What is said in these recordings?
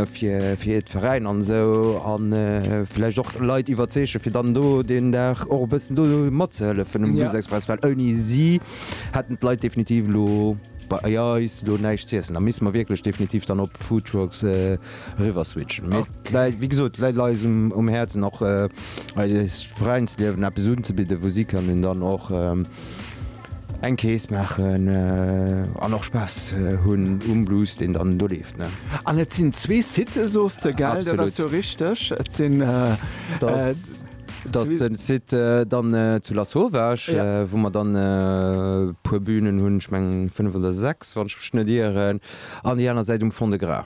fir et Veräiner an esou a vläicht och Leit iwwerzeegen, fir dann do deen Dag och e bëssen do matzehëllefen um Bluesexpress, well ouni si hätten d'Leit definitiv elo bei eis elo näischt z'iessen. Da misste mer wierklech definitiv dann op Foodtrucks eriwwer switchen. Mee et läit, wéi gesot, et läit eis um Häerzen och eist Veräinsliewen eppes unzebidden, wou si kënnen dann och, Eng Kees maachen an och Spaass hunn um Blues, deen dann do leeft, ne? An et sinn zwee Sitë, sos de, gell? Absolut. Dat ass jo richteg. Et sinn. Dat ass den Site dann zu Lasauvage. Ja. Wou mer dann e puer Bünen hunn, ech mengen fënnef oder sechs, wann ech mech net ieren, an déi aner Säit um Fond-de-Gras.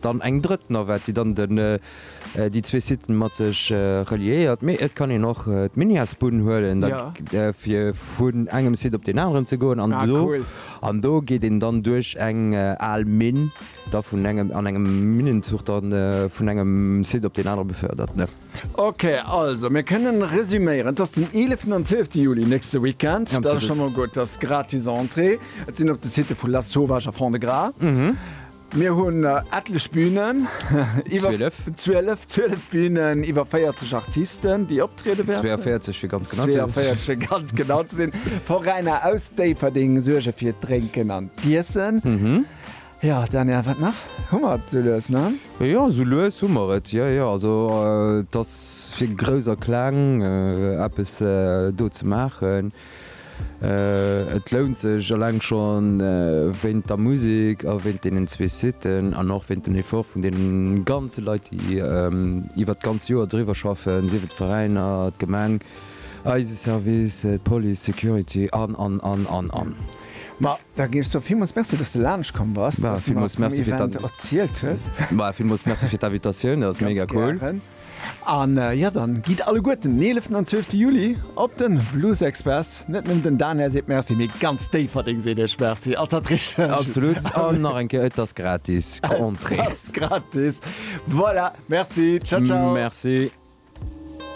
Dann eng drëtt Navette, déi dann den déi zwee Sitten mat sech reliéiert. Mee et kann een och d'Minias-Bunn huelen, da fir vun engem Site op deen aneren ze goen. An do, an do geet een dann duerch eng al Minn, da vun engem, an engem Minnenzuch da vun engem Site op deen anere befördert. Ok, also mir kënne resüméieren, et ass den eeleften an zwielfte Juli, nächste Weekend. Dat ass scho mol gutt. Et ass gratis Entrée. Et sinn op de Sitte vu Lasauvage a Fond-de-Gras. Mir hunn etlech Bünen, iwwer 12, 12, 12 Bünen, iwwer 40 Artisten, déi optriede wäerten. 42 fir ganz genau ze sinn. 42 fir ganz genau ze sinn. Veräiner aus Déifferdeng suerge fir d'Drénken an d'Iessen. Jo, Daniel, wat nach? Hu mer et esou lues, ne? Jo, esou lues hu mer et, jo, jo. Also et ass fir Grouss a Kleng eppes do ze maachen. Et lount sech eleng schon wéint der Musik a wéint deenen zwee Siten an och wéint den Effort vun deene ganze Leit déi iwwert d'ganz Joer driwwer schaffen, sief et d'Veräiner, d'Gemeng, eise Service, d'Police, d'Security an an an an an. Ma da ginn ech der villmools Merci dass de laanscht komm bass, dass de mer vum Event erzielt hues. Villmools Merci fir d'Invitatioun, dat ass mega cool. An jo, dann gidd alleguerten den 11 an 12 Juli op den Bluesexpress. Net nëmmen den Dane seet Merci, mee ganz Déifferdeng seet iech Merci. Ass dat richteg? Absolut, an nach eng Kéier, et ass gratis Entrée. Et ass gratis. Voilà, Merci. Ciao, ciao. Merci.